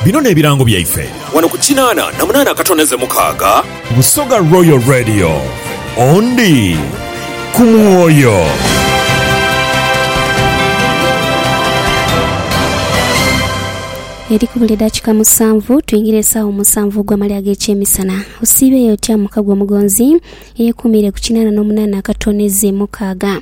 Bino n'ebirango byaife. Wano ku kinaana na munaana akatondeze mukaaga. Busoga Royal Radio, ondi ku mwoyo. Eri kubula edakika musanvu twingire esawa musanvu ogwa male agekyemisana. Osiibeyo otya muka gwo mugonzi eyekuumiire ku kinaana n'omunaana akatoneze mukaaga.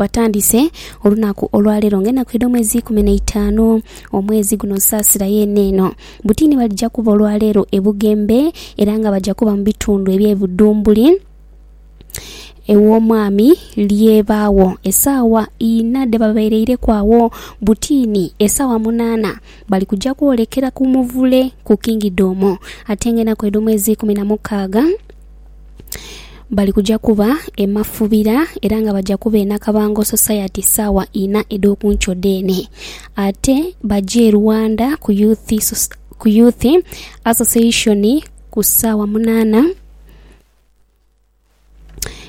Batandise olunaku olwaleero nga enaku edh'omwezi ikumi n'eitaanu omwezi guno nsaasira yeene eno. Butiini balija kuba olwaleero e Bugembe era nga baja kuba mu bitundu eby'e Budhumbuli ew'omwami Lyebaagho esaawa inha dhebabaireireku agho. Butiini esaawa munaana bali kuja kwolekera ku muvule ku Kingidhomu ate nga enaku edh'omwezi ikumi na mukaaga, bali kuja kuba e Mafubira era nga baja kuba e Nakabango Society saawa inha edh'okunkyo dheene. Ate baje e Rwanda ku Youth ku Youth Association ku saawa munaana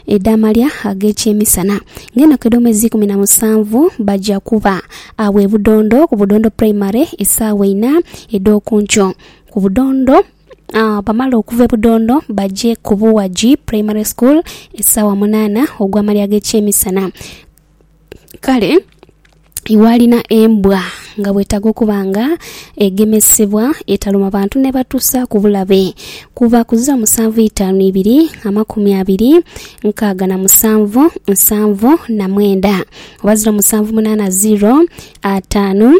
edh'amalya ag'ekyemisana. Nga enaku edh'omwezi eikumi na musanvu baja kuba agho e Budondo ku Budondo Primary esaawa inha edh'okunkyo ku Budondo. Bamala okuva e Budondo baje ku Buwagi Primary School esaawa munaana ogw'amalya ag'ekyemisana. Kale iwe alina embwa nga bwetaaga okuba nga egemesebwa etaluma bantu nebatusa ku bulabe kuva ku zo musanvu itaanu ibiri amakumi abiri nkaaga na musanvu nsanvu na mwenda oba ziro musanvu munaana ziro ataanu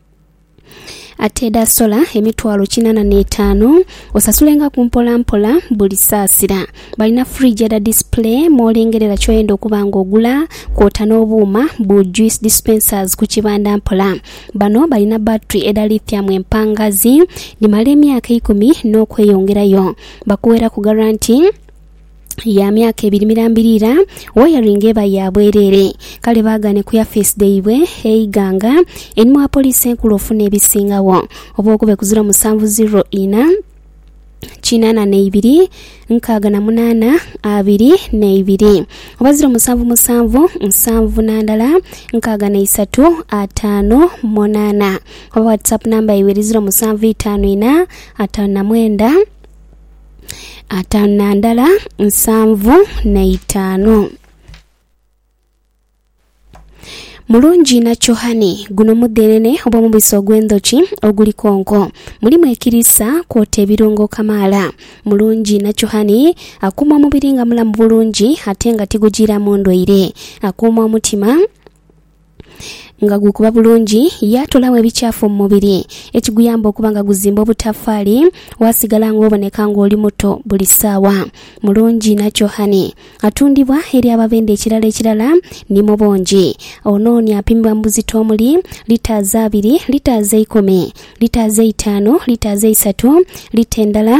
Ate edhaasola emitwalo kinana n'etaanu, osasulengaku mpolampola buli saasira. Balina fridge edha display mw'olengerera ky'oyenda okuba nga ogula, kwota n'obuuma bu juice dispensers ku kibanda mpola. Bano balina battery edha lithium empangazi, dhimala emyaka eikumi n'okweyongerayo. Bakuweraku garanti. ya myaka ebiri mirambirira wayaringa eba ya bwerere kale bagane ku yafeesi dhaibwe eighanga eni mwa poliisi enkulu ofuna ebisingawo oba okube ku ziro musanvu ziro ina kinana neibiri nkaaga na munana abiri neibiri oba ziro musanvu musanvu nsanvu nandala nkaaga neisatu ataano munana oba whatsapp namba yaibwe eri ziro musanvu itaano ina ataano na mwenda ataanu na ndala nsanvu na itaanu. Mulungi nakyo hani, guno mudhenene oba omubisi ogw'endhoki oguli konko. Mulimu ekiriisa kwota ebirungo kamaala. Mulungi nakyo hani akuuma omubiri nga mulamu bulungi ate nga tigujiiramu ndwaire. Akuuma omutima. nga gukuba bulungi, yaatolagho ebikyafu mu mubiri, ekiguyamba okuba nga guzimba obutafaali, waasigala ng'oboneka ng'oli muto buli saawa. Mulungi na Chohani. Atundibwa eri ababenda ekirala ekirala ni mu bungi. Ono ni apimibwa mu buzito omuli, litres abiri, litres eikumi, litres eitaanu, litres eisatu, lita endala,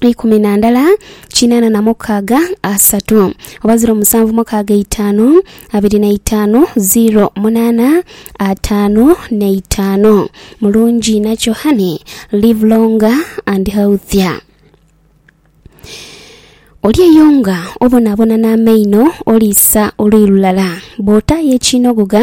ikumi na ndala kinaana na mukaaga asatu oba ziro musanvu mukaaga eitaanu abiri na itaanu ziro munaana ataanu na itaanu mulungi nakyo hani live longer and healthier oli eyo nga obonabona n'amaino oliisa oluyi lulala bw'otaayo ekiinogoga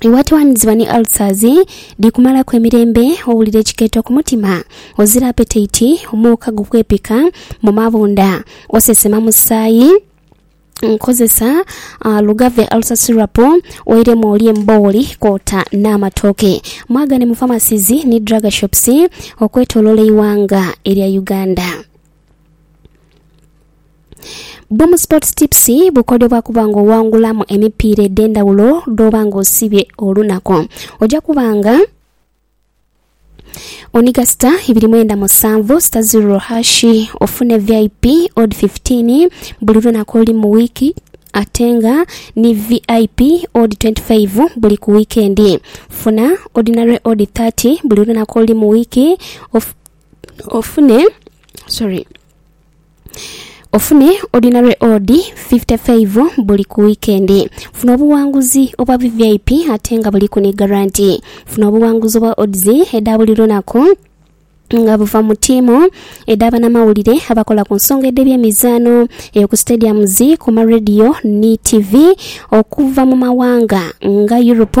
Iwatwaniziba ni ulcers dhi kumalaku emirembe, owulira ekikeeto ku mutima, ozira apetite, omuuka gukwepika mu mabunda, osesema musaayi. Nkozesa uh, Lugave Ulcer Syrup oiremu olye embooli kwota n'amatooke. Mwagane mu pharmacies ni drug shops okwetoloola eighanga erya Uganda. Boom Sports Tips bukodyo bwa kuba nga owangulamu emipiira edh'endhawulo dh'oba nga osibye olunaku. Oja kuba nga oniga sita ibiri mwenda musanvu sita ziro hashi ofune vip od 15 buli lunaku oli mu wiiki ate nga ni vip od 25 buli ku wiikendi. Funa ordinary od 30 buli lunaku oli mu wiiki of Ofune, sorry. Ofune ordinary odd 55 buli ku wikendi. Funa obuwanguzi obwa VVIP ate nga buliku ni garanti. Funa obuwanguzi obwa odds edha buli lunaku nga buva mu tiimu edha banamawulire abakola ku nsonga edh'ebyemizaano eyo ku stadiums ku ma radio ni tv okuva mu mawanga nga Europe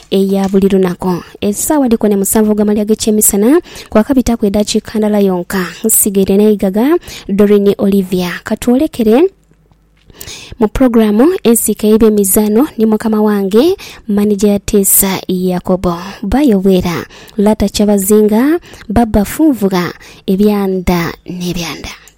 eya buli lunaku. Esaawa dhiko ne musanvu ogw'amalya ag'ekyemisana kwakabitaku edaakiika ndala yonka nsigaire n'eigaga. Doreen Olivia. Ka twolekere mu pulogulaamu ensiike y'ebyemizaano ni mukama wange manija ya Tiisa Yakobo. Bayo Bwera, Lata Kyabazinga, Baba Funvugha, Ebyanda n'Ebyanda.